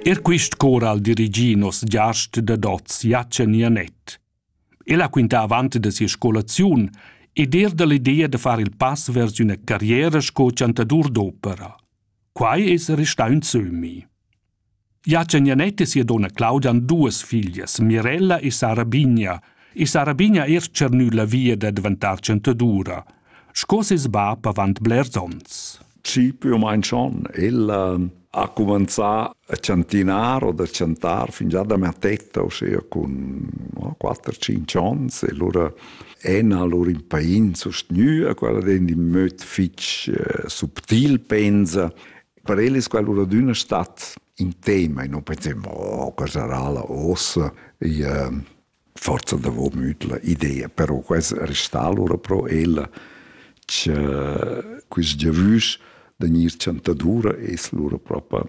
Er quist cor al dirigi nos giast da dots Jachen Janet. El ha quintà avant da sia scolaziun ed er da l'idea da far il pass vers üna carriera sco chantadur d'opera. Quai es restà ün sömmi. Jachen Janet e sia donna Claudia han duas figlias, Mirella e Sara Bigna, e Sara Bigna er tschernü la via da diventar chantadura – sco ses bab avant blers onns. Ci più o meno schon. Il ha cominciato a chantinar o da chantar fin già da mattetta, ossia con 4-5 anni. E allora ena lur impain sostenua, quella den in möd fitch eh, subtil pensa. Per el è quella di una stat in tema e non pensavo, oh, che sarà la ossa. E, eh, forsa davò mütla idea, però quest restà alura pro ella cha quist giavüsch da gnir chantadura es lura propa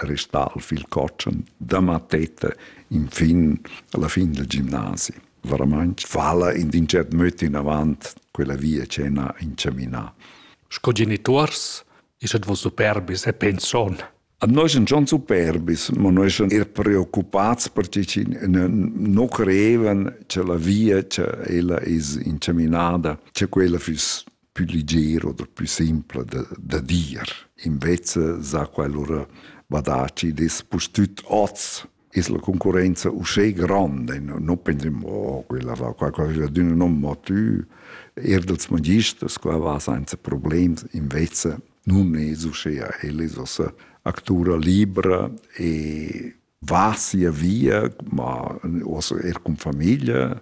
restà al fil cotschen da mattetta infin alla fin del gimnasi. Veramaing vala in ün tschert möd inavant quella via che n'ha inchaminà. Sco genituors es ed voss superbis e penson Noi sun schon superbis, ma noi sun eir preoccupats per chi chi nu creevan cha la via cha ella es inchaminada, cha quella füss pü liger oder pü simpla da, da dir. Invece s'ha quel lura badà chi'd es pustüt hoz es la concurrenza uschè granda e non pensem oh quella va qua quella d'üna non mo tü er dels magisters qua va senza problems invece nun es uschea ella es ossa actura libra e va sia via ma ossa er con famiglia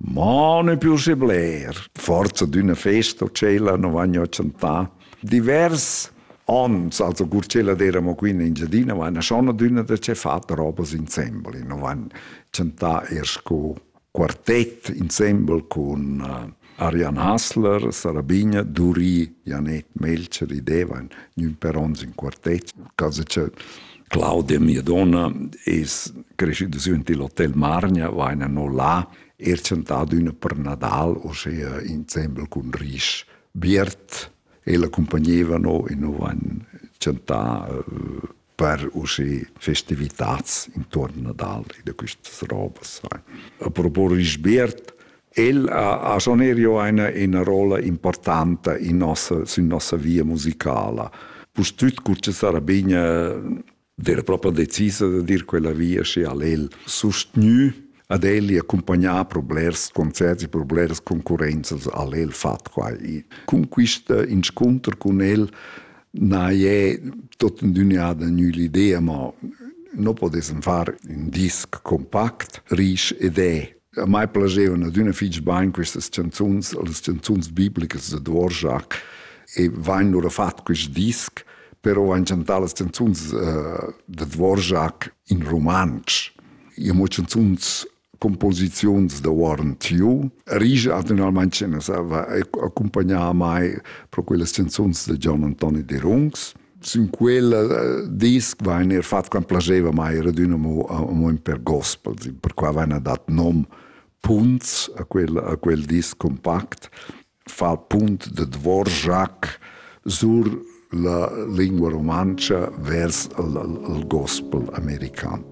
Mo ne più se bler, forza d'üna festa o tschella non vagno a chantà. Divers ons, also cur ch'ella d'eramo qui in Engiadina, vaina schon adüna da ce far robas insembel. Non van chantà eir sco quartett insembel cun uh, Arian Hassler, Sarabigna, Duri, Janet Melcher, i devan gnün per ons in quartett, cosa cha Claudia, mia donna, es crescida sün il Hotel Margna, va ina no là, er tschentado üna per Nadal, osea insembel cun risch biert. Ella accompagneva no e no van tschentà uh, per usche festivitats intorno Nadal e da quistas robas. A propos risch biert, El ha, ha schon erio eine, eine rolla importanta in nossa, sün nossa via musicala. Pustüt cucce Sarabigna era proprio decisa da dir quella via sche al el sustgnü ad el e accompagnare per blers concerti, per blers concorrenzas al el fat qua. E con questa incontro con el na è totenduniada nü l'idea, ma no potessem far un disc compact, risch ed è A mai piacevano adüna fich bain quistas chanzuns, las chanzuns biblicas da Dvorak e vain lura fat quist disc, però vain chantà las chanzuns uh, da Dvorak in rumantsch. I amo chanzuns composiziuns da Warren Tiu. Rija attualment ce ne sa va accompagnà a mai pro quelle canzons da Gian Antoni De Rungs. Sin quella dis vain er fat quant plaseva mai era adüna mo amo ün per gospel, per qua vaina dat nom Punts a quel, a quel dis compact, fa punt de Dvorak sur la lingua rumantscha vers il, il gospel american.